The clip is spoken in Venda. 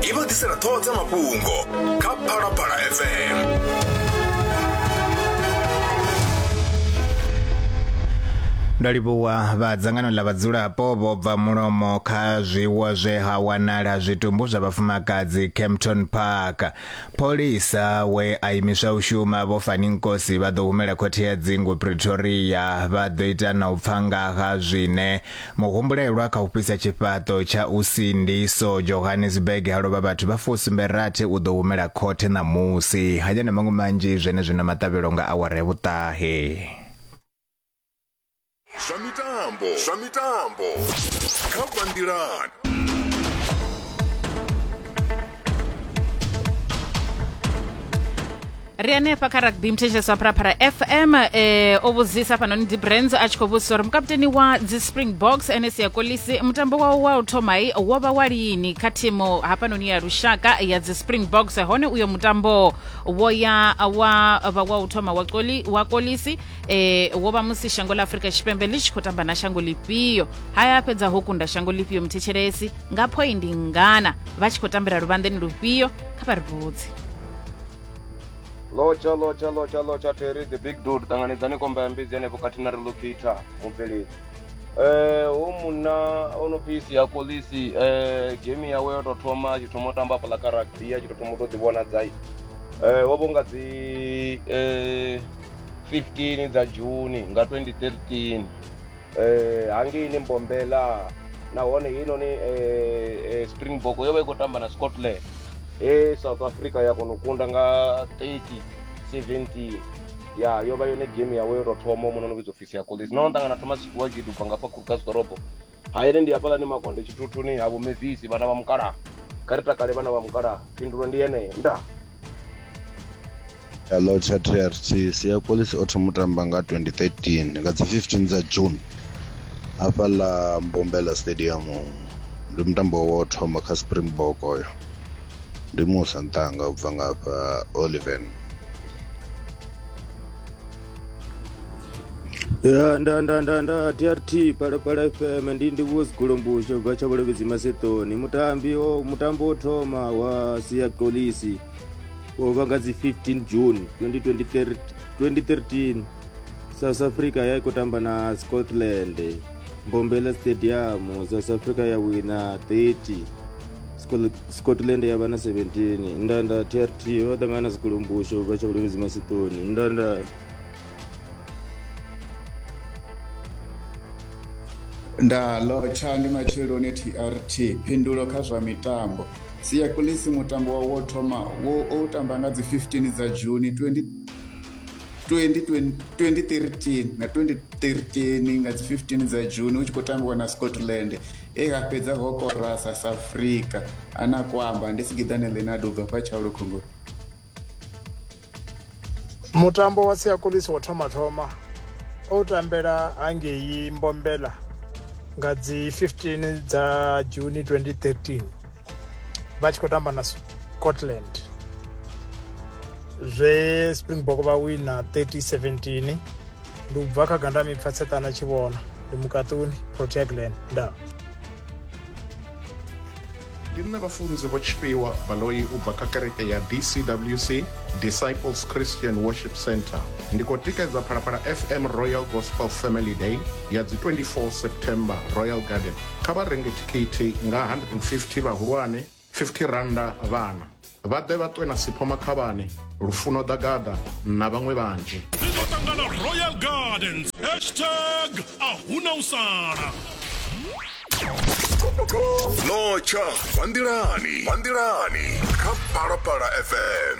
i vha ḓisela ṱhoho dza mafhungo kha phalaphala fm ndo livhuwa vha dzangano ḽa vhadzulapo vho bva mulomo kha zwiwo zwe ha wanala zwitumbu zwa vhafumakadzi Kempton Park pholisa we a imiswa u shuma vho Fani Nkosi vha ḓo humela khothe ya dzingu Pretoria vha ḓo ita na u pfa nga ha zwine Muhumbulelwa kha u fhisa tshifhaṱo tsha u sindiso Johannesburg ha lovha vhathu vha fusumbe rathi u ḓo humela khothe ṋamusi. Haya na maṅwe manzhi zwenezwino maṱavhelo nga awara ya vhuṱahe. Zwa mitambo zwa mitambo kha bva nḓilani. ri hanefha kha rugby mthetshelesi wa pharapara fm eh, o vhudzisa hafhanoni dibrands a tshi khou vhudzisa uri mukaputeni wa dzi spring box ns ya kolisi mutambo wawo wa u thomai wo vha wa lini kha thimu hafhanoni ya lushaka ya dzi spring box hone uyo mutambo wo ya wa vha wa u thoma wa, koli, wa kolisi eh, wo vha musi shango la afurika tshipembe ḽi tshi khou tamba na shango lifhio haya a fhedza ho kunda shango lifhio mthetshelesi nga phoindi ngana vha tshi khou tambela luvhanḓeni lufhio kha vha ri vhudzi lotsha lotsha lotsha lotsha terry the big dude ṱanganedzani komba ya mbidzi henefho khathihi na relocata mubveledzi um hu munna o no phi sia kolisi um gemi yawe yo tou thoma a tshi thoma u tamba afhaḽa kha rugby a tshi tou thoma u tou ḓivhona dzai um wo vho nga dzi um fifteen dza juni nga twenty thirteen eh, hangei ni mbombela nahone heinoni eh, eh, springbok yo vha i khou tamba na scotland e south africa ya kona u kunda nga 30 17 ya yo vha yone game yawe yo tou thoma muno no vhidzwa ofisi ya colis no ṱangana thomas tshikuwa gidu bva ngafha khurukas ḓorobo haene ndi hafhalani makonde tshithuthuni havo mevisi vhana vha mukalaha kha ri takale vhana vha mukalaha phindulo ndi yeneyo nda hello chatrt sia kolisi o thoma u tamba nga 2013 nga dzi 15 dza june hafha ḽa mbombela stadium ndi mutambo wo thoma kha springbok oyo ndi musa ntanga u bva nga hafha oliven Ya, nda nda nda nda trt pala pala fm ndi ndi vuo zigolombusho bva tsha vhulevhedzi masetoni mutambi o mutambo wo thoma wa sia kolisi wo vha nga dzi 15 june 2023 2013 south africa ya i khou tamba na scotland mbombela stadium south africa ya wina 30 scotland ya vha na 17 ndanda trt vha ṱangana na zikulumbusho vha tsha vhuleludzi masitoni ndanda nda lotsha ndi matsheloni trt phindulo kha zwa mitambo sia kulisi mutambo wawo wo thoma wo o tamba nga dzi 15 dza juni 20 2013 nga 2013 nga dzi 15 dza june hu tshi khou tambiwa na scotland He ha fhedza ho korasa sa Afrika a na kwamba ndi Sigiḓane Leonardo ubva fha Tshaulu Khongoni. Mutambo wa Siakolisi wo thoma thoma o tambela hangei Mbombela nga dzi 15 dza June 2013. vha tshi khou tamba na scotland zwe springbok vha wina 3017 ndi u bva kha ganda mipfa tsetana tshi vhona ndi mukaṱuni protea glen nda ndi nṋe vhafunzi vho tshifhiwa baloi u bva kha kereke ya dcwc disciples christian worship center ndi khou tikedza phalaphala fm royal gospel family day ya dzi 24 september royal garden Kha vha renge thikhithi nga R150 vhahulwane, R50 vhana. Vha ḓe vha ṱwe na Sipho Makhavhane, Lufuno Ḓagaḓa na vhaṅwe vhanzhi. Ri ḓo ṱangana Royal Gardens, hashtag a huna u sala. Notsha, Vanḓilani, Vanḓilani, kha Phalaphala FM.